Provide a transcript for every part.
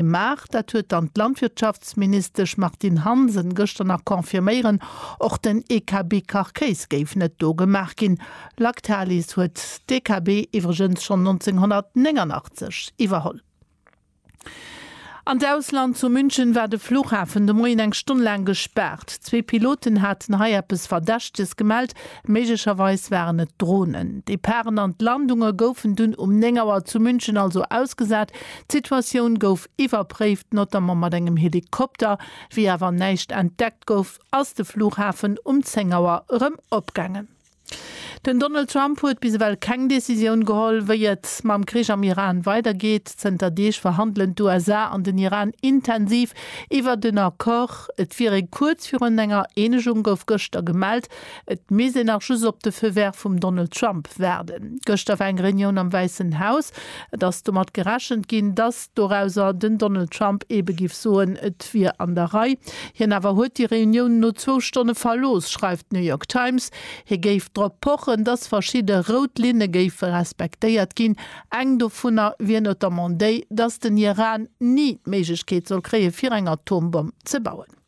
gemaach. Dat huet dann d'Landwirtschaftsministesch Martine Hansen gëschter nach confirméieren. Och den EKB-Carcase géif net do gemaach ginn. Lactalis huet d'EKB iwwregens schonn 1989 iwwerholl. An d'Ausland, Zu München war de Flughafen de Moien eng Stonn laang gespaart. Zwee Piloten haten hei eppes Verdächteges gemellt. Méiglecherweis waren et Dronen. D'Deparen an d'Landunge goufen dunn um 9 Auer zu München also ausgesat. D'Situatioun gouf iwwerpréift, notamment mat engem Helikopter. Wéi awer näischt entdeckt gouf, ass de Flughafen um 10 Auer erëm opgaangen. Den Donald Trump huet bis ewell keng Decisioun geholl, wéi et mam Krich am Iran weidergeet. Zënter Deeg verhandelen d'USA an den Iran intensiv iwwert en Accord. Et wier ee kuerz virun enger Eenegung, gouf gëschter gemellt. Et misst een nach just op de Feu vert vum Donald Trump waarden. Gëschter war eng Reunioun am Wäissen Haus. Et ass domat gerechent ginn, datt dorauser den Donald Trump ebe giff soen, et wier an der Rei. Hien awer huet déi Reunioun no zwou Stonne verlooss, schreift d'New York Times. Hie géif drop pochen, datt verschidde rout Linne géife respektéiert ginn. Eng dovunner wier notamment déi, datt den Iran ni d'Méiglechkeet soll kréie fir eng Atombomm ze bauen.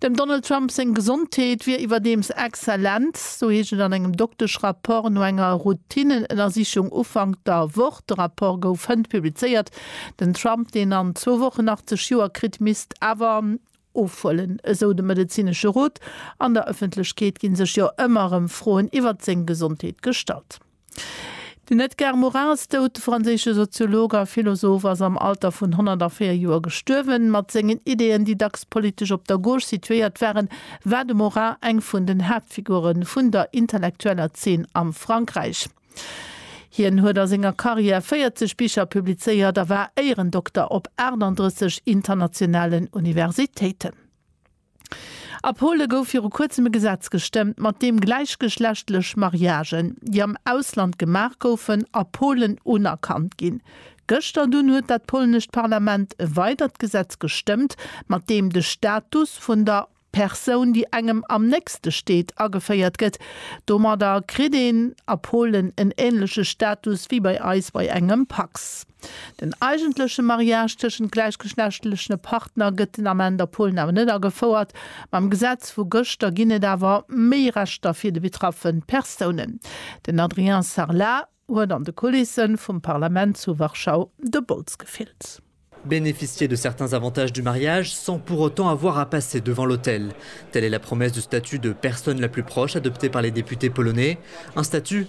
Dem Donald Trump seng Gesondheet wier iwwerdeems exzellent. Sou heescht et an engem Doktesch-Rapport no enger Routinnenënnersichung Ufank der Woch. De Rapport gouf hënt publizéiert. Den Trump, deen an zwou Wochen 80 Joer kritt, misst awer ofhuelen, esou de medezinesche Rot. An der Ëffentlechkeet gi sech jo ëmmer erëm Froen iwwert seng Gesondheet gestallt. Den Edgar Morin ass dout. De franséische Soziolog a Philosoph ass am Alter vun 104 Joer gestuerwen. Mat sengen Ideeën, déi dacks politesch op der Gauche situéiert waren, war de Morin eng vun den Haaptfigure vun der intellektueller Zeen am Frankräich. Hien huet a senger Karriär 40 Bicher publizéiert a war Éierendokter op 38 internationalen Universitéiten. A Pole gouf viru kuerzem e Gesetz gestëmmt, mat deem gläichgeschlechtlech Mariagen, déi am Ausland gemaach goufen, a Polen unerkannt ginn. Gëschter dunn huet dat polnescht Parlament e weidert Gesetz gestëmmt, mat deem de Status vun der Persoun, déi engem am nächste steet, ageféiert gëtt. Domadder kritt een a Polen en änleche Status wéi bei eis bei engem Pacs. Den eigentleche Mariage tëschent gläichgeschlechtleche Partner gëtt den Ament a Polen awer net agefouert. Mam Gesetz vu gëschter ginn et awer méi Rechter fir de betraffe Persounen. Den Adrien Sarlat huet an de Kulisse vum Parlament zu Warschau de Bols gefillt. Bénéficier de certains avantages du mariage sans pour autant avoir à passer devant l'autel, telle est la promesse du statut de personne la plus proche adopté par les députés polonais, un statut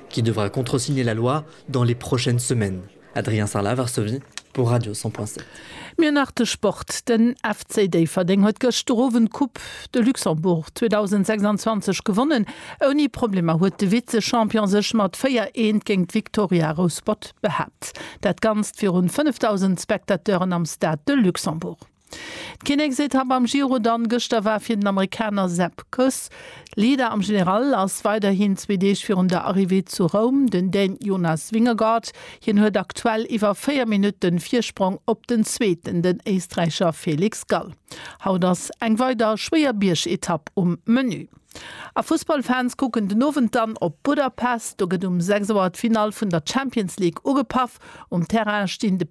qui devra contresigner la loi dans les prochaines semaines. Adrien Sarlat, Varsovie pour Radio 100.7. Mir nach de Sport, Den FC Déifferdeng huet gëschter Owend d'Coupe de Luxembourg 2026 gewonnen. Ouni Problemer huet de Vize-Champion sech mat 4 Eent géint d'Victoria Rouspert behaapt. Dat Ganzt virun 5.000 Spectateuren am Stade de Luxembourg. D'Kinneksetapp am Giro dann gëschter war fir den Amerikaner Sepp Kuss Leader am General, ass weiderhin zwee Deeg virun der Arrivée zu Roum den Dän Jonas Vingegaard. Hien huet aktuell iwwer 4 Minutten Virsprong op den Zweeten, den Éisträicher Felix Gall. Haut ass eng weider schwéier Biergetapp um Menü. A Fussballfans kucken den Owend dann op Budapest. Do gëtt um 6 Auer d'Finall vun der Champions League ugepaff. Um Terrain stinn de